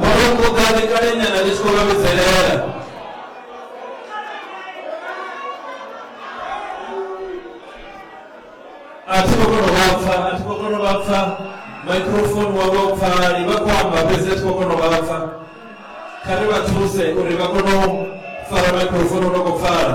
Vhurukhuḓani kale nyana ndi tshi khou vha vhidzelela a thi khou kona u vha pfa a thi khou kona u vha pfa microphone wavho pfali vha khou amba fhedzi a thi khou kona u vha pfa kha ri vha thuse uri vha kone u fara microphone u no khou pfala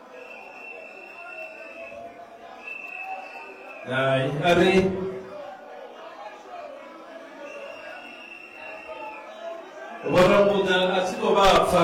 Ay, arre. Vhona muṋa a tshi tou vha pfa.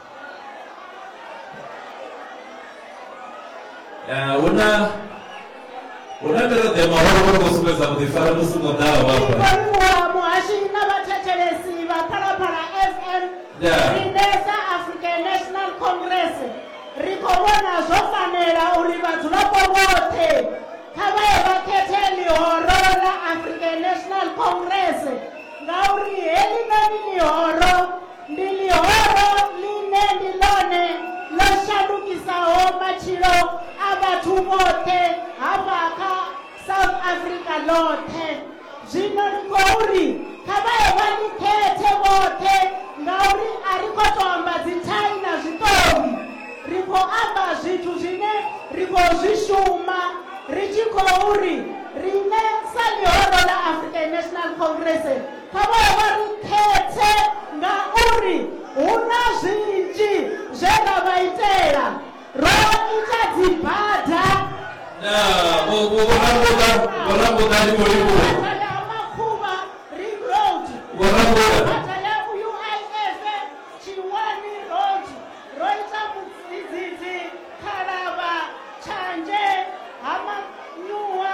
Eh, hu na hu na miraḓo ya mahoro vho no khou sumbedza vhuḓifari musi no ḓaho vhafha Vhaliwa muhashi na vhathetshelesi vha Phalaphala FM Yeah. riṋe sa African National Congress ri khou vhona zwo fanela uri vhadzulapo vhoṱhe kha vha ye vha khethe ḽihoro ḽa African National Congress ngauri heḽinoni ḽihoro ndi ḽihoro ḽine ndi ḽone ḽo shandukisaho matshilo a vhathu vhoṱhe hafha kha south africa ḽoṱhe zwino ri khou ri kha vha ye vha ḽi khethe vhoṱhe ngauri a ri khou tou amba dzithai na zwiṱori ri khou amba zwithu zwine ri khou zwi shuma ri tshi khou ri riṋe sa ḽihoro ḽa african national congress kha vha vha ri khethe ngauri hu na zwinzhi zwe ra vha itela ro ita dzibada na vho vho vho rambuḓa vho rambuḓa ndi vho livhuwa bada ya makhuvha ring road vho rambuḓa bada ya uif tshiwani road ro ita mudzidzidzi khalavha tshanje ha manyuwa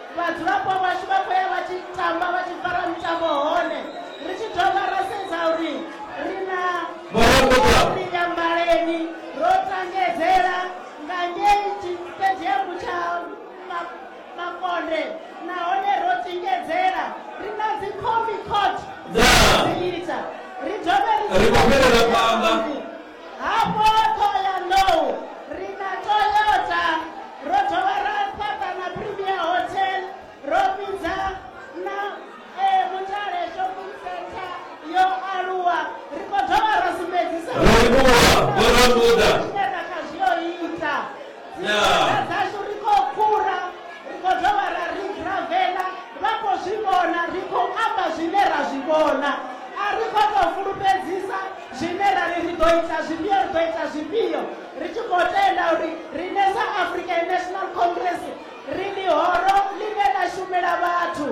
vhadzulapo vhashu vha khou ya vha tshi tamba vha tshi fara mitambo hone ri tshi dovha ra sedza uri ri na ri nyambaleni ro tangedzela nga ngei tshitediamu tsha makonde nahone ro tingedzela ri na dzi comi court dza dzi ita ri dovhe ri khou fhelela phanḓa Hafho Thohoyandou ri na Toyota, ro dovha ra fhaṱa na Premier Hotel, ro fhidza na eh, Mutale Shopping Centre yo aluwa. Ri khou dovha ra sumbedzisa Ro livhuwa vho Ramuda. Ṱhoḓea dzashu ri khou phura, ri khou dovha ra rigravela, vha khou zwi vhona, ri khou amba zwine ra zwi vhona. A ri khou tou fulufhedzisa zwine ra ri ri ḓo ita zwifhio, ri ḓo ita zwifhio, ri tshi khou tenda uri riṋe sa African National Congress ri ḽihoro ḽine ḽa shumela vhathu.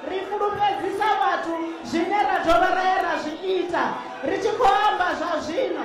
Ri fulufhedzisa vhathu zwine ra dovha ra ya ra zwi ita, ri tshi khou amba zwa zwino.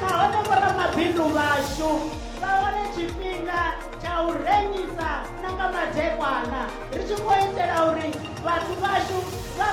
nahone vhoramabindu vhashu vha wane tshifhinga tsha u rengisa na nga madekwana ri tshi khou itela uri vhathu vhashu vha